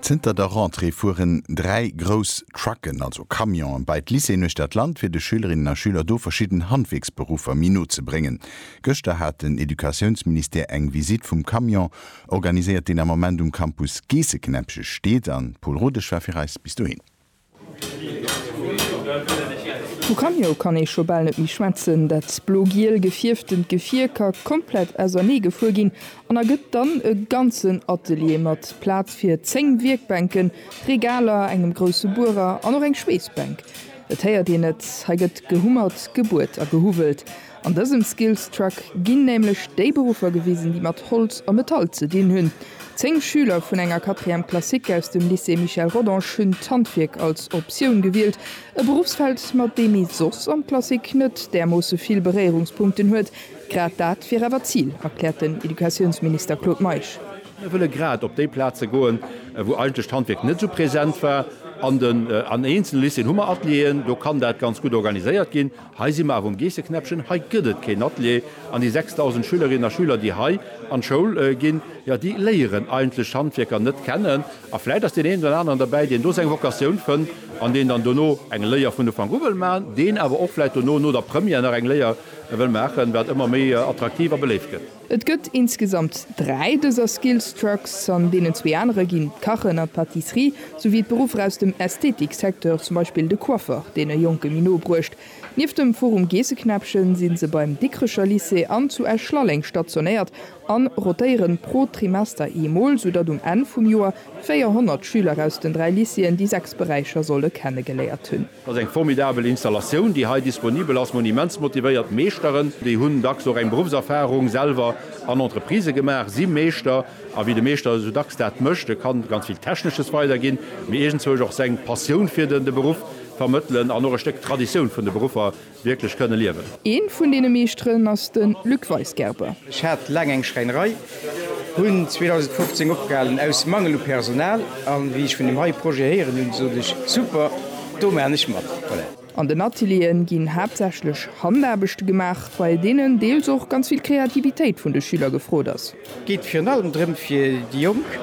Zënter der Rentrée fueren dräi grouss Trucken, also Camionen, bei d'Lycéeën uechter d'Land, fir de Schülerinnen a Schüler do verschidden Handwierksberuffer méi no ze bréngen. Gëschter hat den Educatiounsministère eng Visitt vum Camion organiséiert, deen am Ament um Campus Geesseknäppche steet an d'Paule Rodesch war fir eis bis dohin. Vu Camio kann ee scho bal net méi schwätzen. Dat blo-giel gefierftent Gefier ka komplett ausernee gefuer ginn an ergëtt dann e ganzen Atelier mat Plaz fir 10 Wierkbänken, Regaler, engem grousse Buerer an och eng Schweessbänk. Et héiert een et, hei gëtt gehummert, gebuert a gehuwwelt. An dësem Skills Truck ginn nämlech déi Beruffer gewisen, déi mat Holz a Metall ze dinn hunn. Zéng Schüler vun enger Quatrième classique aus dem Lycée Michel Rodange hunn d'Handwierk als Optioun gewielt, e Berufsfeld, mat deem ee soss an d'Klassik net därmoosse vill Beréierungspunkten huet. Grad dat wier awer d'Zil, erkläert den Educatiounsminister Claude Meisch. Mir wëlle grad op déi Plaze goen, wou eigentlech d'Handwierk net esou present war. An eenzele Lycéeën hu mer Atelieren, do kann dat ganz gutt organiséiert ginn. Hei si mer awer um Geesseknäppchen, hei gëtt et keen Atelier an déi 6.000 Schülerinnen a Schüler, déi hei an d'Schoul ginn, jo, déi léieren eigentlech d'Handwierker net kennen. A vläicht ass deen een oder aneren derbäi, deen do seng Vocatioun fënnt an deen dann dono eng Léier vun Ufank u wëll maachen, deen awer och vläicht dono, no der Première, nach eng Léier wëll maachen, wat ëmmer méi attraktiv a beléift gëtt. Et gëtt insgesamt dräi dëser Skills Trucks, an deenen zwee anere ginn d'Kachen an d'Pâtisserie, souwéi d'Beruffer aus dem Ästhetik-Secteur, zum Beispill de Coiffeur, deen e Jonke méi no bruecht. Nieft dem Forum Geesseknäppchen si se beim Dikrecher Lycée an zu Esch-Lalleng stationéiert a rotéieren pro Trimester eemol, soudatt um Enn vum Joer 400 Schüler aus den dräi Lycéeën déi sechs Beräicher solle kennegeléiert hunn. Dat ass eng formidabel Installatioun, déi hei disponibel ass. Monimentsmotivéiert Meeschteren, déi hunn dacks och eng Beruffserfarung selwer an Entreprisë gemaach, si Meeschter. A wéi de Meeschter esou dacks dat mécht, e kann ganz vill Technesches weiderginn, mee iergendzwousch och seng Passioun fir de Beruff vermëttelen an och e Stéck Traditioun vun de Beruffer Wierklech kënne liewen. Een vun deene Meeschteren ass den Luc Weisgerber. Ech hat laang eng Schräinerei, hunn 2015 opgehalen aus Mangel u Personal an wéi ech vun dem hei Projet héieren hunn, sot ech, super, do maachen ech mat. An den Atelieren ginn haaptsächlech Handaarbechte gemaach, bei deenen deels och ganz vill Kreativitéit vun de Schüler gefrot ass. Et geet virun allem drëm fir déi Jonk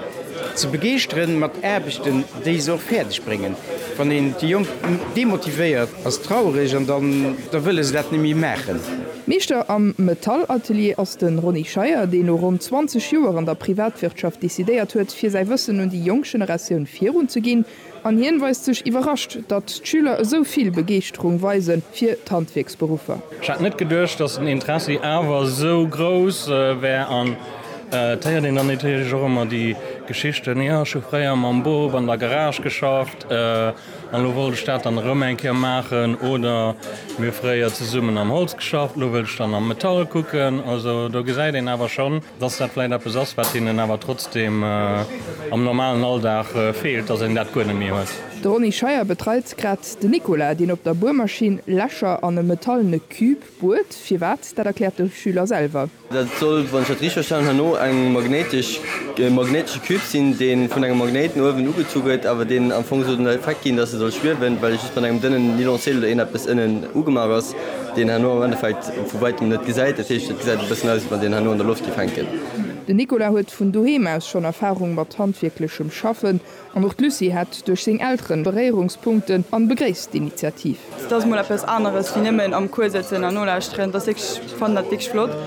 ze begeeschtere mat Aarbechten, déi se och fäerdeg bréngen. Wann een déi Jonk demotivéiert, ass traureg an dann da wëlle se dat net méi maachen. Meeschter am Metallatelier ass de Ronny Scheier, deen no ronn 20 Joer an der Privatwirtschaft decidéiert huet, fir säi Wëssen un déi jonk Generatioun virunzeginn. An hien weist sech iwwerrascht, datt d'Schüler esou vill Begeeschterung weise fir d'Handwierksberuffer. Ech hätt net geduecht, datt den Interessi awer esou grouss wär. An et héiert een dann natierlech och ëmmer déi Geschichten, Jo, ech hu fréier mam Bop an der Garage geschafft an elo wollt ech dat dann erëm eng Kéier maachen. Oder, Mir hu fréier zesummen am Holz geschafft, elo wëll ech dann am Metall kucken. Also do gesäit een awer schonn, dass dat vläicht eppes ass, wat hinnen awer trotzdeem am normalen Alldag feelt, dass een dat guer net méi huet. De Ronny Scheuer betreit grad den Nicolas, deen op der Buermaschinn Lächer an e metallene Cube buert. Firwat, dat erkläert de Schüler selwer. Dat soll, wann ech dat richteg verstanen hunn, no eng magnéitesch, magnéitesche Cube sinn, dee vun engem Magnéit no uewen ugezu gëtt, awer deen am Fong soll den Effekt ginn, dass e soll schwiewen, well just mat engem dënnen Nylonseel oder eeneppes ënnen ugemaach ass. deen herno am Endeffekt vu wäitem net gesäit, dat heescht et gesäit e bëssen aus, wéi wann deen herno an der Loft géif hänken. Den Nicolas huet vun doheem aus schonn Erfarung mat handwierklechem Schaffen an och d'Lucie hätt duerch seng Elteren Beréierungspunkten an begréisst d'Initiativ. Dat ass mol eppes aneres wéi nëmmen am Cours sëtzen an nolauschteren. Dat ass wierklech, ech fannen dat wierklech flott,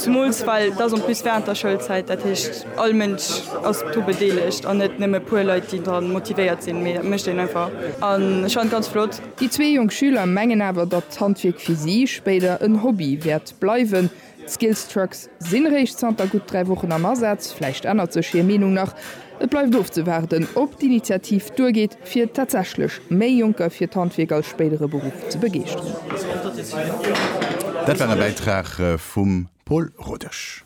zumools well et ass en plus während der Schoulzäit, dat heescht all Mënsch ass dru bedeelegt an net nëmme e puer Leit, déi dra motivéiert sinn, mee dat mécht een einfach an ech fannen et ganz flott. Déi zwee jonk Schüler mengen awer, datt d'Handwierk fir si spéider en Hobby wäert bleiwen. D'Skills Trucks sinn réischt zanter gutt dräi Wochen am Asaz. Vläicht ännert sech hir Meenung nach. Et bleift ofzewaarden, ob d'Initiativ duergeet, fir tatsächlech méi Jonker fir d'Handwierk als spéidere Beruff ze begeeschteren. Dat war e Bäitrag vum Paul Rodesch.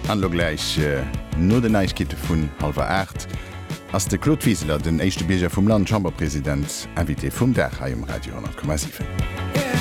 An elo gläich no den Neiegkeete vun hallwer 8 ass de Claude Wiseler, den éischte Bierger vum Land, Chamberpresident, Invité vum Dag hei um Radio 100,7.